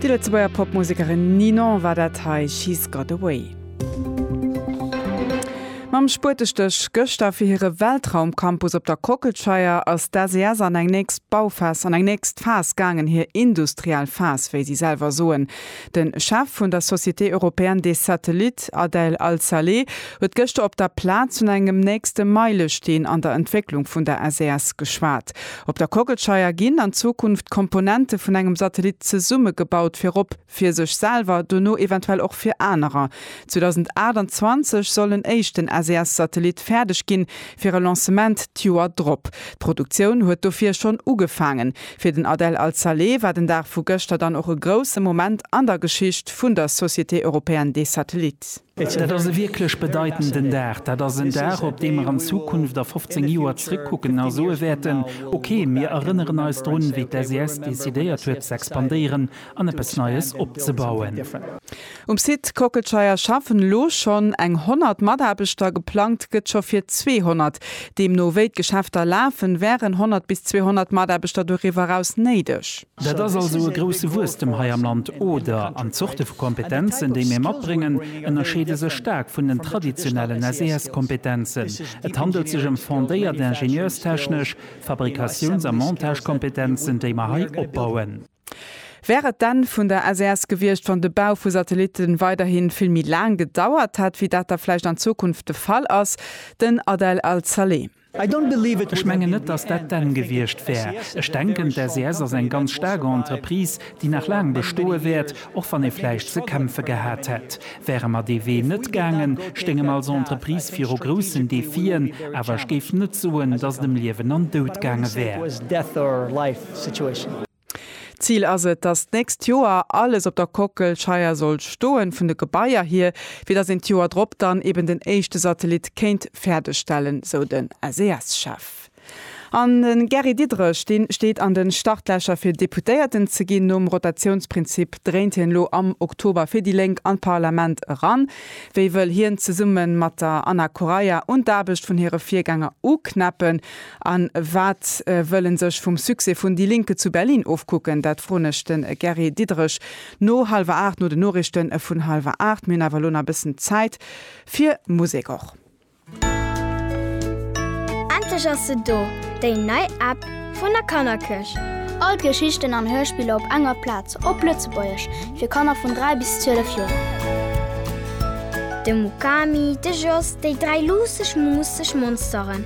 Déi Lëtzebuerger Popmusekerin Ninon war dat hei, She's Got A Way. Mam Spuetestéch gëschter fir hire Weltraumcampus op der Kockelscheier ass d'SES an eng nächst Bauphas, an eng nächst Phas gaangen, hir industriell Phas, wéi si selwer soen. De Chef vun der Société européenne des satellites, Adel Al-Saleh, huet gëschter op der Plaz vun engem nächste Meilesteen an der Entwécklung vun der SES geschwat. Op der Kockelscheier ginn an Zukunft Komponente vun engem Satellit zesummegebaut, virop fir sech selwer, dono eventuell och fir anerer. 2028 soll en éischten SES-Satellit fäerdeg ginn, fir e Lancement d'Joer drop. D'Produktioun huet dofir schonn ugefaangen. Fir den Adel Al-Saleh war den Dag vu gëschter dann och e grousse Moment an der Geschicht vun der Société Européenne des Satellites. Dat ass e wierklech bedeitenden Dag. Dat ass en Dag, op dee mer an Zukunft a 15 Joer zrëckkucken a soe wäerten, Okay, mir erënneren eis drun, wéi d'SES decidéiert huet z'expandéieren an eppes Neies opzebauen. Um Site Kockelscheier schaffen elo schonn eng 100 Mataarbechter, geplangt gëtt scho fir 200. Deemno wéi d'Geschäfter lafen, wären 100 bis 200 Mataarbechter doriwwer eraus néideg. Dat ass also e grousse Wuesstem hei am Land, oder? An d'Zorte vu Kompetenzen, déi mir matbréngen, ënnerscheede sech staark vun den traditionellen SES-Kompetenzen. Et handelt sech ëm fondéiert ingenieurstechnesch, Fabrikatiouns a Montagekompetenzen, déi mer hei opbauen. Wär et d'Enn vun der SES gewiescht, wann de Bau vu Satellitte weiderhi vill méi laang gedauert hätt, wéi dat da vläicht an Zukunft de Fall ass? Den Adel Al-Saleh. Ech mengen net, datt dat d'Enn gewiescht wär. Ech denken, d'SES ass eng ganz staark Entreprise, déi nach laang bestoe wäert, och wann ee vläicht ze kämpfe gehat hätt. Wäre mer dee Wee net gaangen, stéinge mer als Entreprise viru groussen Defien, awer ech géif net soen, datt et ëm Liewen an Dout gaange wär. situation. D'Zil ass et, dass d'nächst Joer alles op der Kockelscheier soll stoen, vun de Gebaier hier, fir dass een d'Joer drop dann eben den éischte Satellit kéint fäerdeg stellen, sou den SES-Chef. An de Gary Diderich, dee steet an de Startlächer fir Deputéierten ze ginn. Nom Rotatiounsprinzip dréint hien elo am Oktober fir déi Lénk an d'Parlament eran. Wéi wëll hien zesumme mat der Anna Correia un d'Aarbecht vun hire Virgänger uknäppen? An wat wëll en sech vum Succès vun Die Linke zu Berlin ofkucken? Dat froen ech de Gary Diderich no hallwer 8, no de Noriichte vun hallwer 8. Mir hunn awer elo nach e bëssen Zäit fir Musek och. Endlech ass se do, déi nei App vun der Kannerkirch! All d'Geschichten an Hörspiller op enger Plaz, op Lëtzebuergesch, fir Kanner vun 3 bis 12 Joer. De Mukami, de Jos, déi dräi luusseg, muusseg Monsteren.